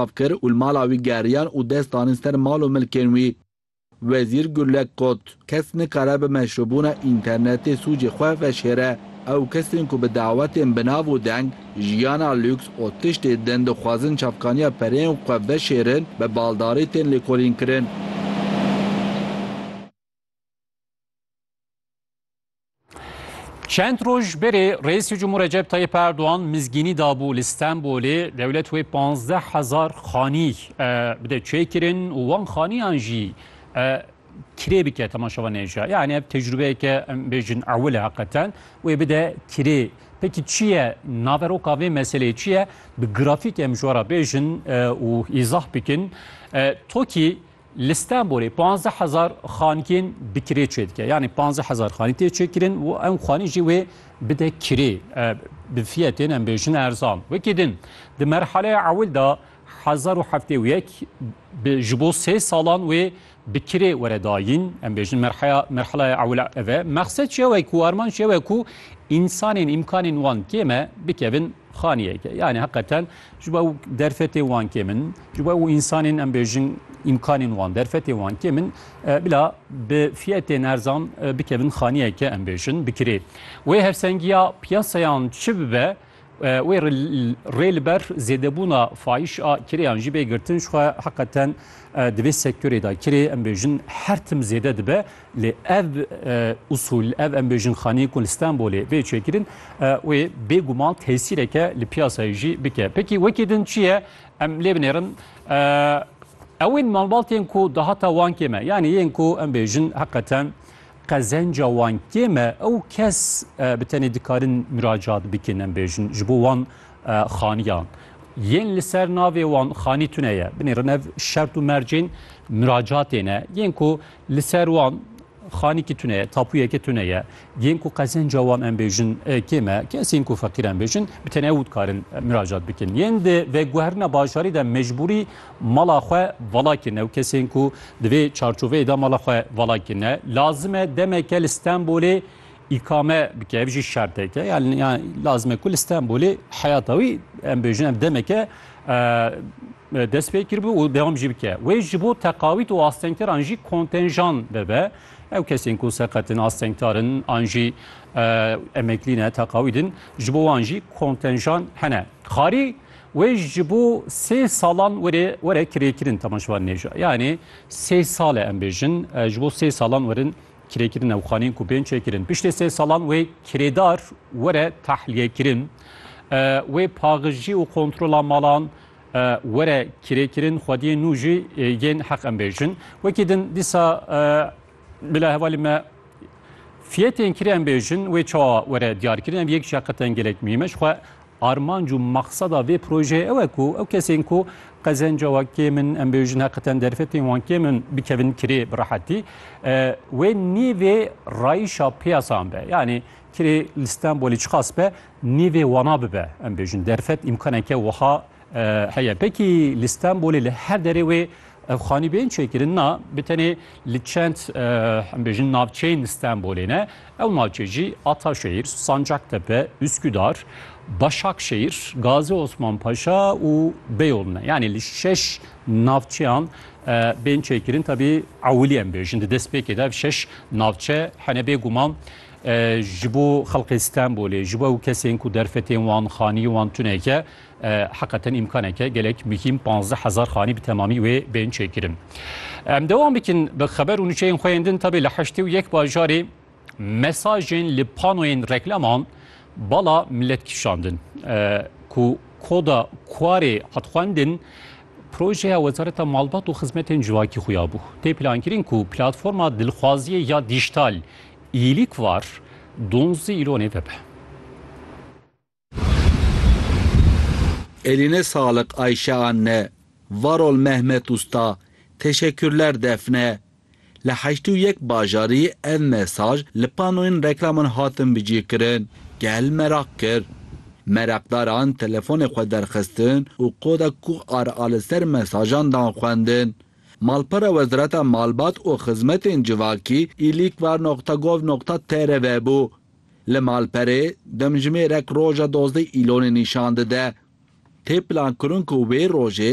av kir û li mala wî geriyan û dest danin ser mal û milkên wî. Wezîr Gurlek got, Kes nikare bi meşrûbûna înternetê sûcê xwe veşêre. Ew kesên ku bi dawetên bi nav û deng, jiyana lûks û tiştê din dixwazin çavkaniya pereyên xwe veşêrin, bi baldarî tên lêkolînkirin. Çend roj berê Reisê Cumhur Recep Tayyip Erdoğan mizgînî dabû li Stenbolê dewlet wê 15 hezar xanî bi de çê kirin û wan xaniyan jî kirê bike temaşevan nêja. Yani ev tecrübeyeke em bêjin ewil e heqeten wê bi de kirê. Peki çi ye naveroka vê meseleyê çi ye? Bi grafîk em ji wara bêjin û îzah bikin. Tokî Li Stenbolê panzdeh hezar xankên bi kirê çê dike. Yanî panzdeh hezar xanî tê çêkirin û ew xanî jî wê bide kirê bi fiyetên em bêjin erzan. Wekî din, di merhaleya ewil de hezar û heftê û yek bi ji bo sê salan wê bi kirê were dayîn. Em bêjin merheya merhaleya ewil ev e. Mexsed ji ew e ku armanc ji ew e ku însanên îmkanên wan kêm e bikevin Xaniyeke yanî heqeten ji bo ew derfetê wan kêm in, ji bo ew însanên em bêjin îmkanên wan, derfetê wan kêm in, bila bi fiyetên erzan bikevin xaniyeke em bêjin bi kirê. Wê hevsengiya piyasayan çi bibe, wê rê li ber zêdebûna fayiş a kirêyan jî bê girtin. Jixwe heqeten di vê sektorê de kirê em bêjin her tim zêde dibe. Lê ev usûl, ev em bêjin xaneyên ku li Stenbolê bê çêkirin, wê bêguman tesîreke li piyasayê jî bike. Pekî wekî din çi ye? Em lê binêrin. Ew ên malbatên ku dahata wan kêm e, yanî yên ku em bêjin heqeten qezenca wan kêm e, ew kes bi tenê dikarin miracat bikin em bêjin ji bo wan xaniyan. Yên li ser navê wan xanî tune ye. Binêrin ev şert û mercên miracatê ne. Yên ku Li ser wan xanîkî tune ye, tapûyeke tune ye. Yên ku qezenca wan em bêjin kê me, kesên ku feqîr em bêjin bi tenê ew dikarin miracat bikin. Yên di veguherina bajarî de mecbûrî mala xwe vala kirine û kesên ku di vê çarçoveyê de mala xwe vala kirine lazim e demeke li Stenbolê îkame bike. Ev jî şerteke. Yan lazim e ku li Stenbolê heyata wî em bêjin ev demeke dest pê kiribû û dewam jî bike. Wê ji bo teqawît û astengteran jî kontenjan bebe. Ew kesên ku seqetin, astengtarin an jî emeklî ne, teqawî din ji bo wan jî kontenjan hene. Xarî wê ji bo sê salan were were kirêkirin temaşevan nêja. Yanê sê sale em bêjin ji bo sê salan werin Kirêkirina û xaneyên ku bên çêkirin piştê sê salan wê kirêdar were tehlîyekirin, wê paxijî û kontrola malan were kirêkirin, xwediyên nû jî yên heq em bêjin. Wekî din dîsa bila hevalê me fiyetên kirê em bêjin wê çawa were diyarkirin, ev yek jî heqiqeten gelek muhîm e. Jixwe Armanc û maqseda vê projeyê ew e ku ew kesên ku qezenca wan kêm in, em bêjin heqîten derfetên wan kêm in, bikevin kirê bi rehetî. Wê nîvê rayîşa piyasan be. Yanî kirê li Stenbolê çiqas be, nîvê wana bibe. Em bêjin derfet îmkaneke wiha heye. Pekî li Stenbolê li her derê wê Ev xanîbeyên çêkirin na bi tenê li çend em bêjin navçeyên Stenbolê ne. Ew navçe jî Ataşehîr, Sancaktepe, Üsküdar, Başakşehîr, Gazi Osman Paşa û Beyoğlu ne. Yanî li şeş navçeyan bên çêkirin tabi ewilî em bêjin di destpêkê de şeş navçe hene bêguman ji bo xelqê Stenbolê ji bo ew kesên ku derfetên wan xanî wan tuneke Heqeten îmkaneke gelek muhîm pazdeh hezar xanî bi temamî wê bên çêkirin. Em dewam bikin bi xeber û nûçeyên xwe yên din tevê li heştê û yek bajarê mesajên li panoyên reklaman bala milet kişandin ku koda Kuarê hat xwendin projeya Wezareta Malbat û Xizmetên Civakî xuya bû. Tê plankirin ku platforma dilxwaziyê ya dîjtal îlîk var donzdî îlonê vebe. Eline sağlık Ayşe anne. Var ol Mehmet usta. Teşekkürler Defne. Li heştê û yek bajarî ev mesaj li panoyên reklaman hatin bicîkirin. Gel meraq kir. Meraqdaran telefonê xwe derxistin û koda QR a li ser mesajan dan xwendin. Malpera Wezareta Malbat û Xizmetên Civakî, îlîkvar noqta gov noqta tr vebû. Li malperê demjimêrek roja dozdeh Îlonê nîşan dide. Tê plankirin ku wê rojê